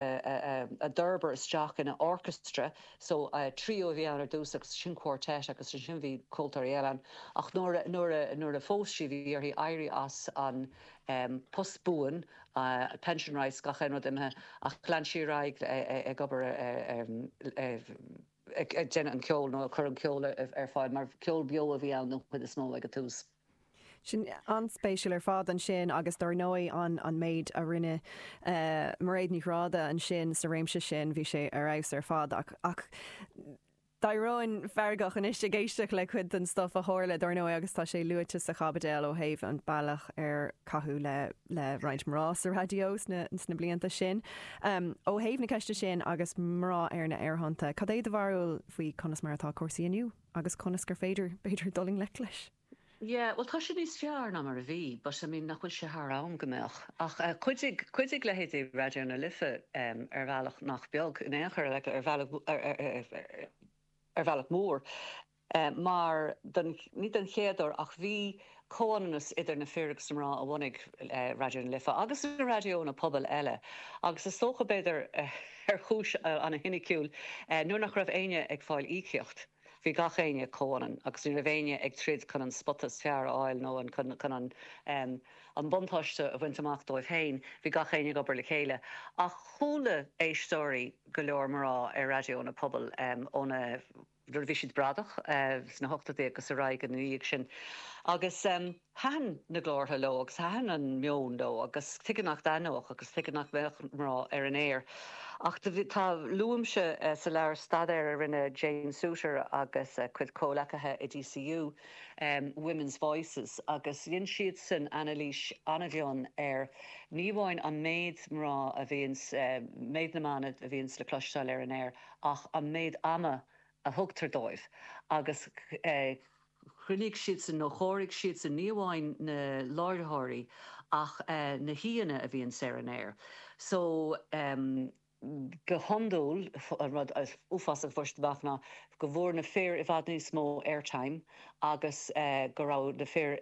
a d'fhorbair isteach ina orchestra so trio a bhí ann ar dtús agus ansin quartet agus ansin bhí ceoltóirí eile ann ach nuair a nuair a nuair a phós sí bhí uirthi éirí as an post buan, pension rights gach aon rud imithe ach lean sí ar aghaidh ag obair ar ag déanamh an ceol nó ag cur an ceol ar fáil mar ceol beo a bhí ann den chuid is mó ag an tús. Sin an-spéisiúil ar fad ansin agus dár ndóigh an méid a rinne Mairéad Ní Ghráda ansin sa réimse sin, bhí sé ar fheabhas ar fad. Ach d'éireoinn feargach anois ag éisteacht le cuid den stuif a tharla, dár ndóigh, agus tá sé luaite sa chaibideal ó thaobh an bealach ar caitheadh le roinnt mná sa raidió sna blianta sin. Ó thaobh na ceiste sin agus mná ar na haerthonnta, cad é do bharúil faoi conas mar atá cúrsaí inniu? Agus conas gur féidir, b'fhéidir, dul i ngleic leis? Yeah, bhuel, tá sé níos fearr ná mar a bhí, but, I mean, nach bhfuil sé thar am go mbeadh? Ach chuidigh, chuidigh leithéidí Raidió na Life ar bhealach nach beag, in aon chor, like, ar bhealach, ar bhealach mór, mar don, ní don chéad uair, ach bhí comhionannas idir na fir agus na mná a bhunaigh Raidió na Life agus na raidiónna pobail eile agus is dócha, b'fhéidir ar chúis ana-shoiniciúil, nuair nach raibh éinne ag fáil íocaíocht, bhí gach éinne comhionann agus ní raibh éinne ag troid chun an spota is fearr a fháil nó chun an buntáiste a bhaint amach dóibh féin, bhí gach éinne ag obair le chéile. Ach chuala éisteoirí, go leor mná, ar raidiónna pobail ó na. nuair a bhí siad bradach sna hochtadí agus ar aghaidh ina dhiaidh sin agus thaitin na glórtha leo agus thaitin an meon leo agus tuige nach dtaitneodh agus tuige nach mbeadh mná ar an aer ach do bhí, tá, luaimse sa leabhar staidéar a rinne Jane Suiter agus a cuid comhleacaithe i DCU, Women's Voices agus dhein siadsan anailís an-mhion ar ní amháin an méid mná a bhíonns, méid na mban a bhíonns le cloisteáil ar an aer, ach an méid ama a thugtar dóibh agus. chruinnigh siadsan nó chomhairigh siadsan ní amháin na láithreoirí ach na haíonna a bhíonns ar an aer so go hiondúil an rud is uafásach a fuair siad amach ná go bhfuair na fir i bhfad níos mó airtime agus go raibh na fir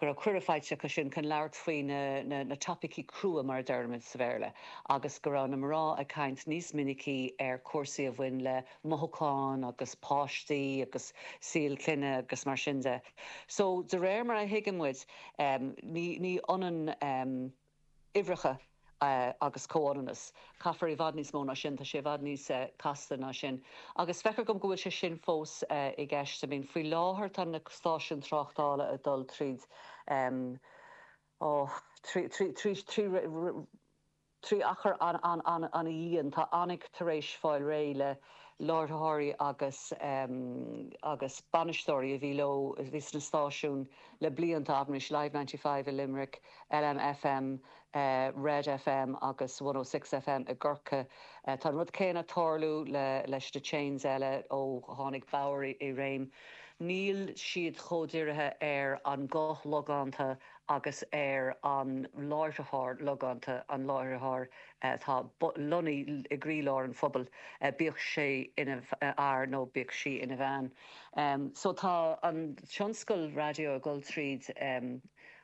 go raibh cuireadh faighte acu sin chun labhairt faoi na topaicí crua, mar a deirimid sa Bhéarla, agus go raibh na mná ag caint níos minicí ar chúrsaí a bhain le mothúcháin agus páistí agus saol clainne agus mar sin de. So, de réir mar a thuigeann muid, ní ionann. uimhreacha agus comhionannas. Caithfear i bhfad níos mó ná sin, tá sé i bhfad níos casta ná sin. Agus feictear dom go bhfuil sé sin fós i gceist. I mean, faoi láthair tá na stáisiúin tráchtála ag dul tríd, em, oh, trí, trí achar an-dian. Tá Onic tar éis fáil réidh le láithreoirí agus, em, agus bainisteoirí a bhí leo, a bhí sna stáisiúin le blianta, abair anois, Live Ninety Five i Limerick, LMFM, Red FM agus 106FM i gCorcaigh. Tá an rud céanna ag tarlú leis na chains eile ó tháinig Bauer i réim. Níl siad chomh dirithe ar an ghuth logánta agus ar an láithreoir logánta, an láithreoir atá lonnaithe i gcroílár an phobail, bíodh sé ina fhear nó bíodh sí ina bhean. So tá an tionscal raidió ag dul tríd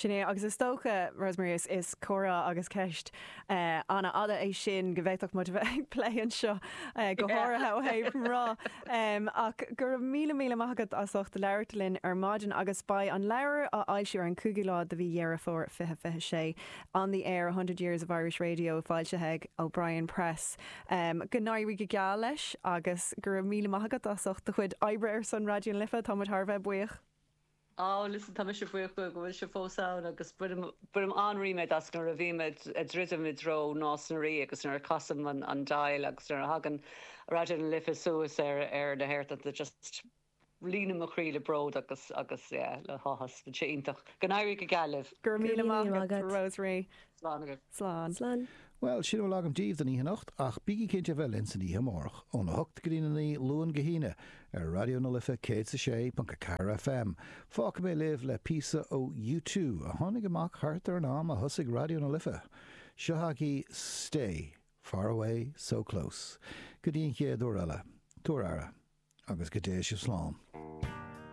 Sin é, agus is dócha, Rosemary, is comhrá agus ceist an-fhada é sin go bhféadfadh muid a bheith ag plé anseo go háirithe ó thaobh mná. Ach go raibh míle míle maith agat as ucht labhairt linn ar maidin, agus beidh an leabhar á fhoilsiú ar an 5ú lá de mhí Dheireadh Fómhair 2026, On the Air, A Hundred Years of Irish Radio, foilsithe ag O'Brien Press. Go n-éirí go geal leis, agus go raibh míle maith agat as ucht do chuid oibre ar son Raidió na Life, tá muid thar a bheith buíoch. Á, listen, tá mise buíoch go bhfuil sibh fós ann agus bainim an-ríméad as nuair a bhím ag druidim i dtreo Nás na Rí agus nuair a chasaim an dial agus nuair a thagann Raidió na Life suas ar na haerthonnta just líonann mo chroí le bród agus agus yeah le háthas. Tá sé iontach. Go n-éirí go geal libh. Go raibh míle maith agat, Rosemary. Slán agaibh. Slán. Slán. Bhuel, sin a bhfuil agam daoibh don oíche anocht, ach bígí cinnte a bheith linn san oíche amárach, óna hocht go dtí a naoi, Luan go hAoine, ar Raidió na Life 106.4 FM. Fágfaidh mé libh le píosa ó U Two, a tháinig amach thart ar an am a thosaigh Raidió na Life. Seo chugaibh Stay, Far Away, So Close. Go dtí an chéad uair eile, tabhair aire, agus go dtéigh sibh slán.